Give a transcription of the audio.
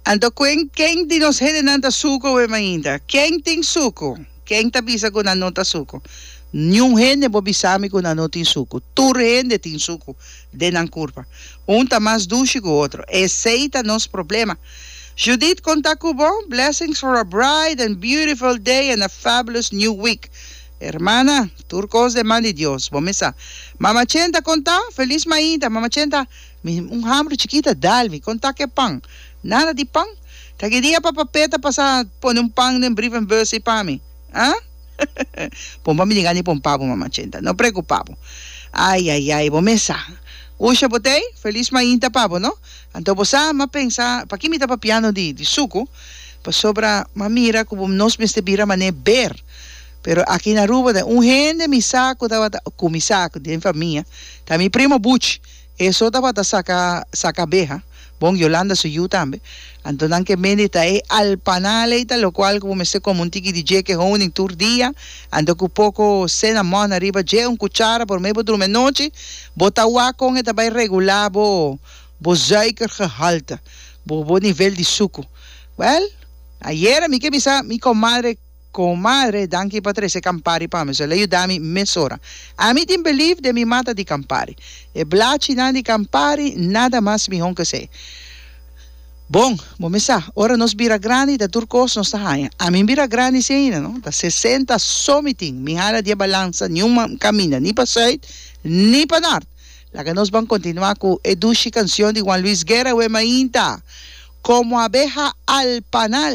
Anto kuen ken di nos hendenan ta suku wem ainda? Ken tin suku? Ken ta bisa ku nan no ta suku? Niun hende por bisami ku nan no tin suku. Tur hende tin suku den nan kurpa. Un ta mas dushi ku otro. Esei ta nos problema. Judith kon ta ku bo? Blessings for a bright and beautiful day and a fabulous new week hermana. Tur kos den man di Dios. Bo mesa. Mama Chenta kon ta? Feliz mainta Mama Chenta. Mi un hambru chikita dal mi kon ta ke pan nada di pan ta ke dia papa Pet ta pasa pone un pan den brievenbus ei pa mi ah bon pa mi di gani pon pa bo mama chenta no preocupa bo ai ai ai bo mes sa usha bo tei felis mainta pa bo no anto bo sa ma pensa paki mi ta papiano di di suku pasobra ma mira ku bo nos mester bira mane ber pero aki na Aruba ta un hende mi sa ku tabata ku mi sa den famia ta mi primo buchi Eso tabata saca saca abeha, bon Yolanda su yu tambe. Anto nan ke mendita e alpanal ey ta lo cual cu bo mester come un tiki di dje ke honing tur dia, anto cu poco cenamon ariba dje, un cuchara por mey bo drumi anochi, bo ta wak con e ta bay regula bo bo zuikergehalte, bo bo nivel di sucu. Well, ayer a mi ke bisa mi comadre. Comadre, danki pa trece Campari pa mi. So el a yuda mi mesora. Ami tin belief den mi mata di Campari. E blachi nan di Campari nada mas mihon ke esey. Bon, bo mi sa, ora nos bira grandi ta tur cos nos ta haya. Ami mi bira grandi sin ayina no. Ta sesenta so mi tin. Mi hala di e balansa ni un caminda ni pa suid ni pa nort. Laga nos ban continua cu e dushi cancion di Juan Luis Guerra we mainta, Como abeja al panal.